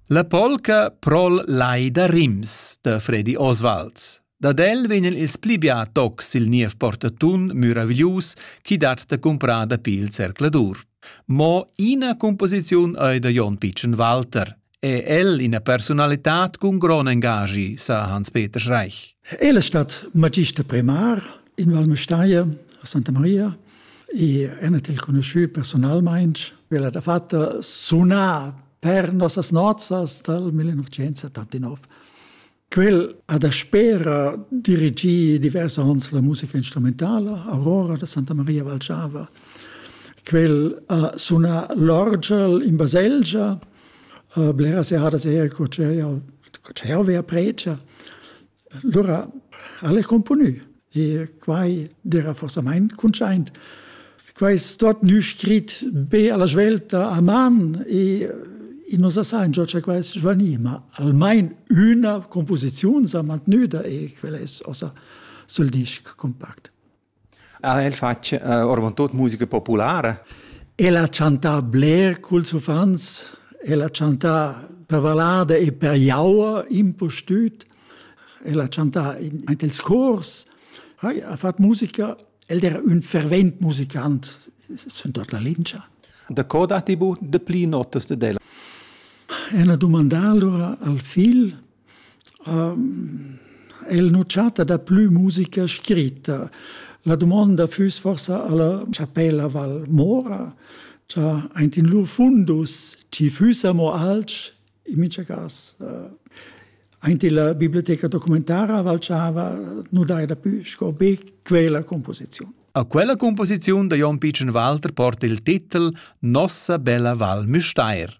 La polca pro'l Lai da Rims da Fredi Oswald. Dad el vegn il pli bia tocs il niev portatun muraviglius chi dat da comprar dapi il zercladur. Mo ina composiziun ei da Jon Pitschen Walter. È el ina personalità con gran engagi, sa Hans-Peter Schreich. El è stato magister primar in Valmestaia a Santa Maria e en il conosciu personalmein quella da fatta suna per nossas nozzas dal 1979. Quel ha da spera dirigì diversi onns la musica instrumentala Aurora da Santa Maria Valciava. Quel ha suna l'orgel in baselgia, bleras jahres er co c'è co c'è a pregia. Lura ha el componü e quai d'eira forsamaing cuntschaint. Quai es tuot gnü scrit be a la svelta a man e i nu sa saingia cha quai es svanì, ma almain üna cumposiziun s'ha mantgnüda e quel es ossa sül disc cumpact. Ha el fatg eh, ormontut musica populara? El ha chantà bler culs uffants, el ha chantà per vallada e per jaua, impustüt. El ha chantà in, aint ils cors, ha, ha fatg musica. El era ün fervent musicant sün tot la lingia. Da co datti bu de pli notas de ella? El ha dumandà allora al figl El nu chatta daplü musica scritta. La dumonda füss forsa alla chapella Val Mora, cha aint in lur fundus ci füssa mo alch, in mincha cas. Aint illa biblioteca documentara Valchava nu daja dapü sco be quella composiziun. A quella composiziun da Jon Pitschen Walter porta il titel Nossa bella Val Müstair.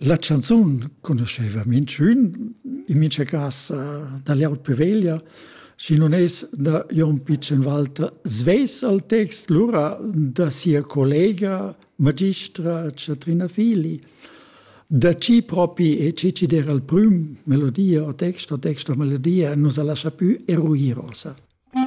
La chanzun conoscheva minchün in mincha casa da l'Erot Peveglia, schi nun es da Jon Pichenwalter svess al text, lura da sia collega magistra Chatrina Fili. Da chi propi e chi ci der al prüm melodia o text o text o melodia nus ha lascia pü eruir ossa.